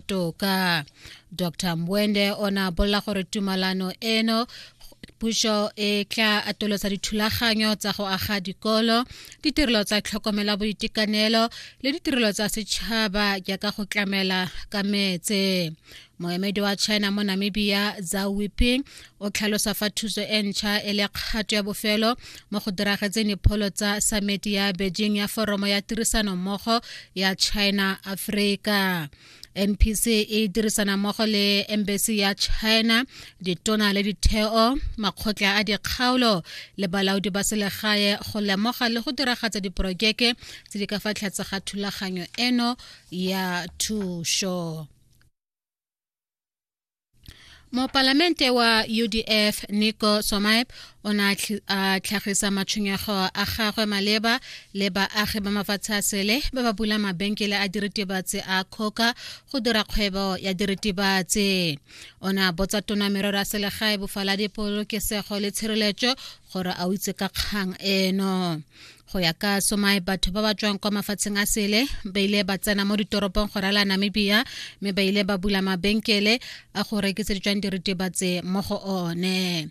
toka dr mbwende o ne a bolela gore tumalano eno puso e tla atolosa dithulaganyo tsa go aga dikolo ditirelo tsa tlhokomela boitekanelo le ditirelo tsa setšhaba jaaka go tlamela ka metse moemedi wa china mo namibia za wiping o tlhalosa fa thuso e ntšha e le kgato ya bofelo mo go diragetseng dipholo tsa sameti ya beijing ya foromo ya tirisano mmogo ya china afrika NPC e dirisana mmogo le embassy ya China ditona le ditheo makgotla a dikgaolo le balaodi ba selegae go lemoga le go diragatsa diporojeke tse di ka fa tlhatse ga thulaganyo eno ya thušo mopalamente wa udf nico somaep o ne a tlhagisa matshwenyego a gagwe maleba le baagi ba mafatshe a sele ba ba bula mabenkele a diritibatsi a kgoka go dira kgwebo ya diritibatsi o ne a botsa tona merero ya selegae bofaladi polokesego le tshireletso gore a o itse ka kgang eno go ya ka somae batho ba ba tswang kwa mafatsheng a sele ba ile ba tsena mo ditoropong go rala namibia mme ba ile ba bula mabenkele a go rekisa ditswang diritibatse mo go one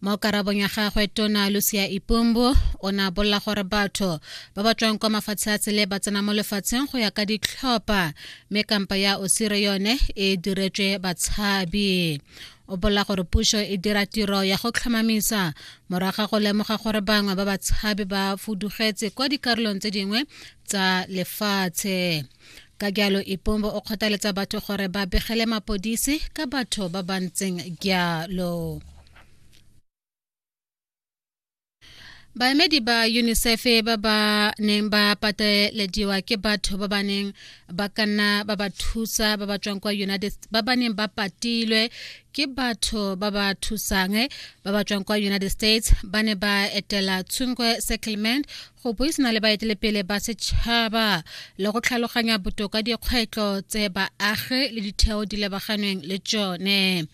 mo karabong ya gagwe tona lucia ipumbu o ne a bolela gore batho ba ba tswang kwa mafatshe a tsele ba tsena mo lefatsheng go ya ka ditlhopha mme kampa ya osire yone e diretswe batshabi o bolela gore puso e dira tiro ya go tlhomamisa moraga go lemoga gore bangwe ba batshabi ba fudugetse kwa dikarolong tse dingwe tsa lefatshe ka jalo ipombo o kgothaletsa batho gore ba begele mapodisi ka batho ba ba ntseng jalo baemedi ba unicef ba ba neng ba patelediwa ke batho ba ba neng ba ka nna ba ba thusa ba ba tswang kwa united ba ba neng ba patilwe ke batho ba ba thusang ba ba tswang kwa united states ba ne ba etela tshungwe settlement go buisana le baetelepele ba setšhaba le go tlhaloganya botoka dikgwetlho tse baagi le ditheo di lebaganeng le tsone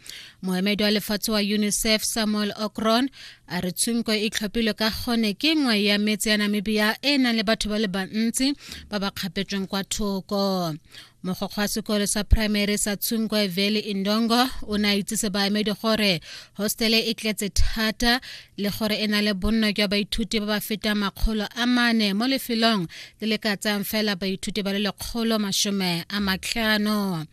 moemedi wa lefatshe wa unicef samuel okron a re tshunko e tlhophilwe ka gone ke nngwe ya metse ya namibia e e nang le batho ba le bantsi ba ba kgapetsweng kwa thoko mogokgo wa sekolo sa primary sa tshunkoe valley indongo o ne a itsise baemedi gore hostele e tletse thata le gore e na le bonno jwa baithuti ba ba fetang makgolo a mane mo lefelong le le ka tsayang fela baithuti ba le lekgolo masome a matlhano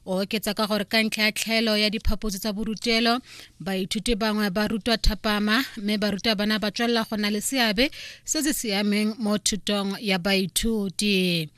o oketsa ka gore ka ntlha ya tlhaelo ya diphaposi tsa borutelo baithuti bangwe ba rutwa thapama mme baruta bana ba tswelela go na le seabe se se siameng mo thutong ya baithuti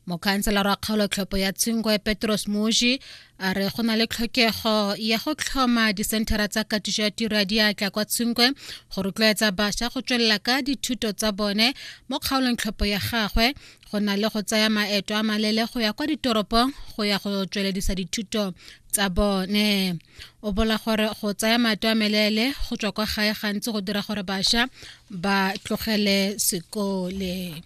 mokhanselara wa kgaolotlhopho ya tshingwe petros moji a re go na le tlhokego ya go tlhoma disenthara tsa katiso ya tiro ya diatla kwa tshingwe go rotloetsa bašwa go tswelela ka dithuto tsa bone mo kgaolong tlhopho ya gagwe go na le go tsaya maeto a malele go ya kwa ditoropong go ya go tsweledisa dithuto tsa bone o bola gore go tsaya maeto a melele go tswa kwa gae gantsi go dira gore bašwa ba tlogele sekole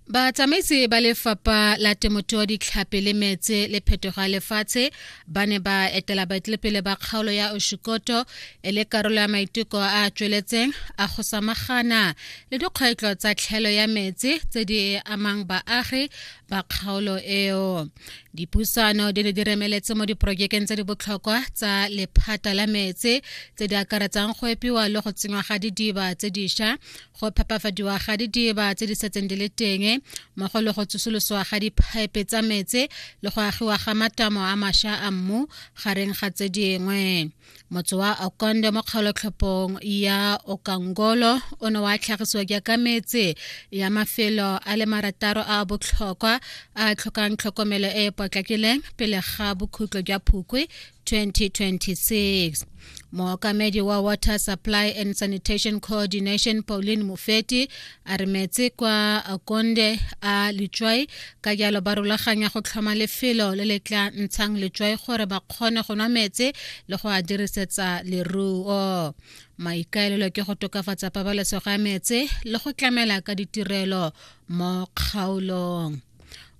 batsamaisi ba lefapha la temothuo ditlhapi le metse le phetogo ya lefatshe ba ne ba etela baetelepele ba kgaolo ya oshikoto e le karolo ya maiteko a a tsweletseng a go samagana le dikgwetlho tsa tlhelo ya metsi tse di amang baagi ba kgaolo eo dipusano di ne di remeletse mo diporojekeng tse di botlhokwa tsa lephata la metsi tse di akaretsang go epiwa le go tsenywa ga didiba tse dišwa go phepafadiwa ga didiba tse di setseng di le teng mmogo le go tsosoloswa ga diphaepe tsa metsi le go agiwa ga matamo a mašwa a mmu gareng ga tse dingwe motse wa okonde mo kgaolotlhopong ya okangolo o ne wa tlhagisiwa jaaka metse ya mafelo a le marataro a botlhokwa a tlhokang tlhokomelo e e potlakileng pele ga bokhutlo jwa phukwe 2026 mookamedi wa water supply and sanitation coordination pauline mofeti a re metse kwa konde a letswai ka jalo ba rulaganya go tlhoma lefelo le le tla ntshang letswai gore ba kgone go nwa metse le go a dirisetsa leruo maikaelelo ke go tokafatsa pabalesego ya metse le go tlamela ka ditirelo mo kgaolong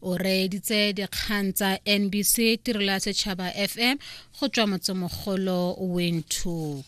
o reeditse dikgang tsa nbc tirelo ya setšhaba fm go tswa motsemogolo windhoek